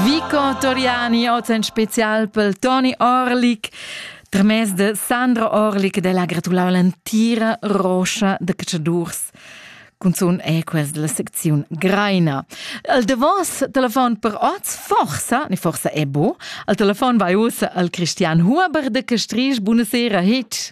Vico Toriani, oz en spezial pel Toni Orlik. Tramez de Sandra Orlik de la gratulau l'entira roscha de cacciadurs. Cunzun è quest la secziun Greina. Al davos telefon per oz, forsa, ni forsa è bo, al telefon vai ussa al Christian Huber de Castrisch. Buonasera, Hitch.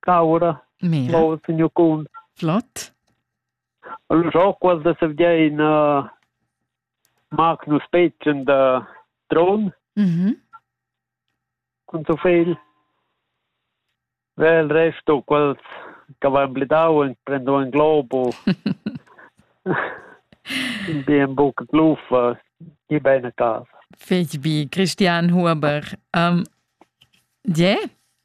Caura, Mora. signor Kuhn. Flott. Allora, ho quasi da in uh, Magnus Petchen da Tron. Mhm. Con so fel. Weil resto quals che avevano blidau e prendo un globo. in bien buca gluffa, die bene casa. Fetch bi, Christian Huber. Um, yeah?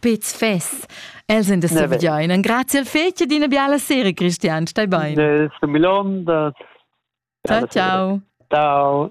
Pez fess. Els sind das so bedeunen. Grazie al fece di una biala sera, Christian. Stai bene. Del Milon. Ciao, ciao. Ciao.